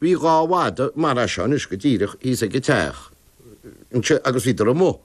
Bhí dhá mhadadh mar seo anois go díreach thíos ag an teach anseo agus bhíodar amuigh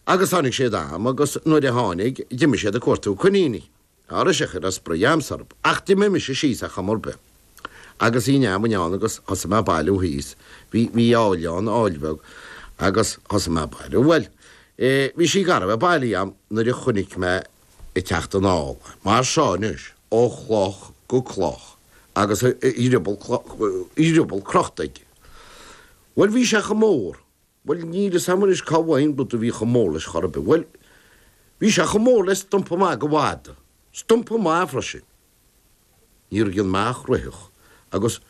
agus tháinig siad am agus nuair a tháinig d'imigh siad ag cuartú coiníní. Tá briseadh ar an spraoi a'ams orm ach d'imigh mise síos ar chuma ar bith agus bhí an fheamainn ann agus thosaigh mé a' bailiú thíos, bhí, bhí aill ann, aill bheag agus thosaigh mé a' bailiú. Bhuel eh bhí sí gar a bheith bailithe a'm nuair a chonaic mé ag teacht anall mar seo anois ó chloch go cloch agus a dhrioball dhrioball crochta aige. Bhuel, bhí sé chomh mór, bhuel, níl 'fhios a'm anois cá bhfaighinn rud a bhí chomh mór leis chor ar bith, bhuel, bhí sé chomh mór le stumpa maith de mhada, stumpa maith freisin. Níor dhein mé ach ritheacht agus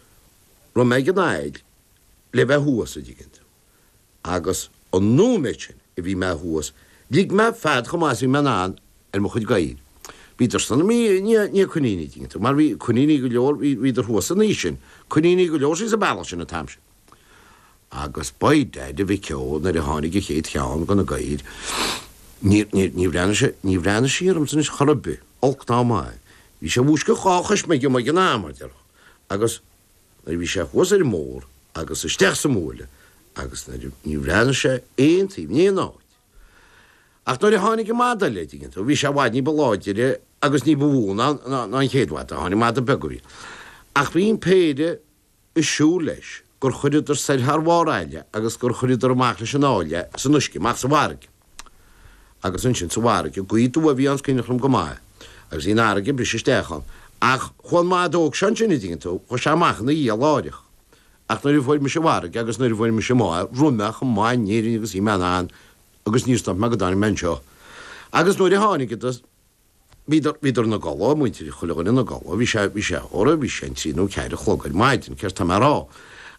raibh mé ag an aill le bheith thuas, a' dtuigeann tú. Agus an nóiméad sin a bhí mé thuas, lig mé fead chomh maith is a bhí mé in ann ar mo chuid gadhair. Bhíodar sin amuigh i ndiaidh coiníní, a' dtuigeann tú, mar bhí coiníní go leor, bhí, bhíodar thuas san áit sin, coiníní go leor síos a' bealach sin an t-am sin. Agus by dad, a mhic ó, nuair a tháinig a chéad cheann de na gadhair, níor, níor, níor bhreathnaigh sé, níor bhreathnaigh sí ormsa anois chor ar bith, olc ná maith. Bhí sé i bhfoisceacht dhá choisméig dhom, ag an am, a déarfá. Agus nuair a bhí sé thuas ar an mbóthar agus isteach sa mbuaile agus nuair a, níor bhreathnaigh sé aon taobh in aon áit. Ach nuair a tháinig an mada eile, a' dtuigeann tú, bhí sé i bhfad ní ba láidire agus ní ba mhó ná, ná, ná an chéad mhada a tháinig, mada beag a bhí, ach bhí an péire, ag siúl leis gur chuireadar soir thar bharr aille agus gur chuireadar amach leis an aill é san uisce amach sa bhfarraige. Agus ansin sa bhfarraige gaoth aduaidh a bhí ann 's cineál trom go maith agus bhí an fharraige ag briseadh isteach ann. Ach chuaigh an madadh óg seo ansin a dtuigeann tú, chuaigh sé amach ina dhiaidh láithreach. Ach nuair a fuair mise farraige agus nuair a fuair mise máire rith mé chomh maith in Éirinn agus bhí mé in ann agus níor stop mé go dtáinig mé anseo. Agus nuair a tháinig iad do. Bhíodar, bhíodar ina gcodladh, muintir, chuile dhuine ina gcodladh, bhí sé, bhí sé, óra, bhí sé an trí nó ceathair a chlog ar maidin, céard tá mé a' rá.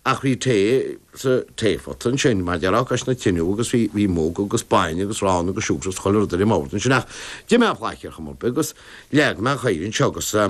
Ach bhí tae, sa, taephota ansin, mar a déarfá, cois na tineadh agus bhí, bhí mug agus bainne agus arán agus siúcra agus chuile rud ar an mbord ansin ach d'ith mé plaic ar chuma ar bith agus leag mé an chathaoir anseo agus eh.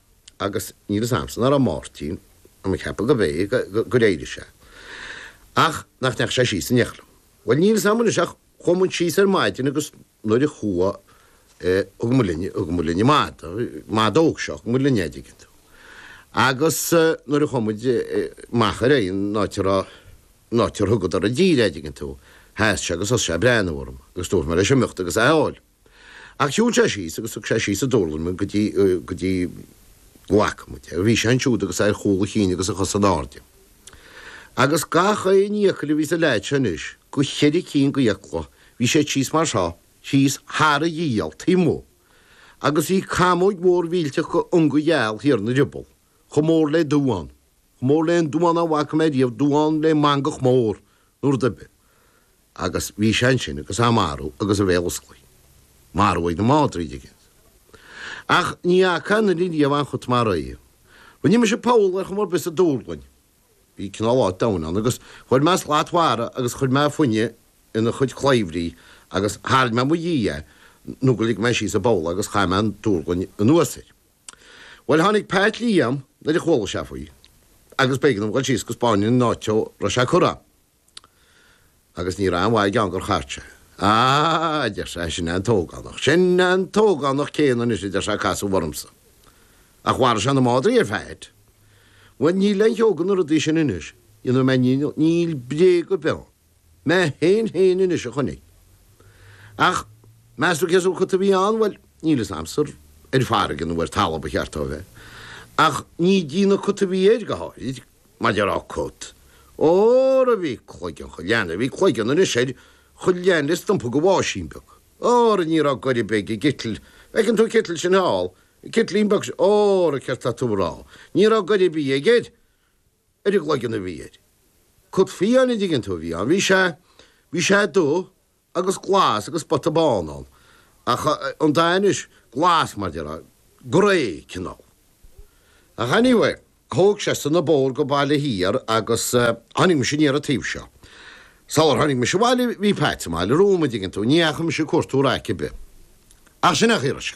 agus níl fhios a'msa, narbh é Máirtín, tá mé ag ceapadh gurb é, gur éirigh sé, ach nach ndeachaigh sé síos in éineacht liom. Bhuel níl fhios a'm anois ach chuaigh muid síos ar maidin agus nuair a chuaigh eh, thug muid linn, thug muid linn an madadh, madadh óg seo, thug muid linn é an dtuigeann tú. Agus nuair a chuaigh muid amach ar an áit a raibh, an áit ar thugadar i dtír é, an dtuigeann tú, sheas sé agus thosaigh sé a' breathnú orm agus dúirt mé leis imeacht agus é a fháil. Ach shiúil sé síos agus thug sé síos sa dúrlainn mé go dtí, go dtí, go bhfaca muid é, bhí sé ansiúd agus é ar chúl a chinn agus a chosa in airde. Agus gach aon fhiacail a bhí sa leaid seo anois, go cheithre cinn go fhiacla, bhí siad síos mar seo, síos thar a ghiall, taobh amuigh. Agus bhí camóg mhór mhillteach go ionga gheal thiar ina rioball, chomh mór le duán, chomh mór le aon duán a bhfaca mé riamh, duán le mangach mór, nó rud ar bith. Agus bhí sé ansin agus é marbh agus a bhéal osclaithe. Marbh ag na madraí, an dtuigeann. Ach ní fhaca aon fhear ariamh aon chut mar é. Rinne mise poll ar chuma ar bith sa dúrlainn. Bhí cineál áit domhain ann agus chuir mé slat mhara agus chuir mé fáinne ina chuid claibhrí agus tharraing mé i mo dhiaidh é nó gur lig mé síos sa bpoll é agus chaith mé an dúrlainn anuas air. Bhuel, tháinig Pat Liam nuair a chuala sé faoi agus b'éigean dom dhul síos go spáinfinn an áit dó a raibh sé curtha ann. Agus ní raibh aon mhaith aige ann gur chart sé. Á, a deir sé, sin é an t-ógánach, sin é an t-ógánach céanna anois, a deir sé, a casadh ormsa. Ach mharaigh sé na madraí ar Phat. Bhuel, níl aon cheo go na rudaí sin anois, dhéanfaidh mé, níl bréag ar bith ann. Mé fhéin fhéin anois a chonaic é. Ach meas tú cén sórt cut a bhí ann? Bhuel, níl fhios a'amsa an ar farraige nó ar talamh ba cheart dó a bheith. Ach ní déanamh cut a bhí air, go háirid, mar déarfá cut. Óra bhí cloigeann cho leathan a bhí cloigeann anois air, cho leathan le stumpa de bháisín beag. Óra ní raibh goir a' bith ag an gcitl, bhfeiceann tú an citl sin thall, an citlín beag sin, óra céard tá tú a' rá, ní raibh goir a' bith aige air. ar an gcloigeann a bhí air. Cut fiáin, an dtuigeann tú, a bhí ann. Bhí sé, bhí sé dubh agus glas agus spota bán ann. Ach eh, an dath anois, glas mar déarfá, grey cineál. Ach anyway, thóg seisean an bóthar go Baile Thiar agus eh, tháinig mise aniar an taobh seo. Sular tháinig mise abhaile bhí Pat sa mbaile romham, an dtuigeann tú, ní dheachaigh mise ag cuartú raic ar bith. Ach sin a chíoradh sé.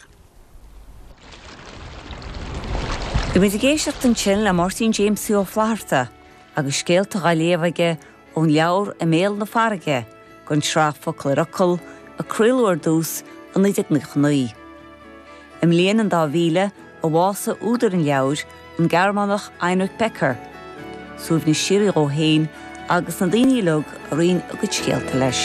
Bhí muid ag éisteacht ansin le Máirtín Jamesie Ó Flatharta agus scéalta á léamh aige ón leabhar I mBéal na Farraige den tsraith Focal ar Fhocal a craoladh ar dtús i 1999. I mbliain an dá mhíle a bhásaigh údar an leabhair, An Gearmánach Heinrich Becker, suaimhneas síoraí dhó féin agus na daoine uilig a roinn a gcuid scéalta leis.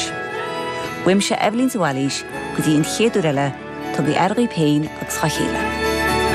Uaimse Eibhlín de Bhailís go dtí an chéad uair eile, tugaigí aire dhaoibh féin agus dá chéile.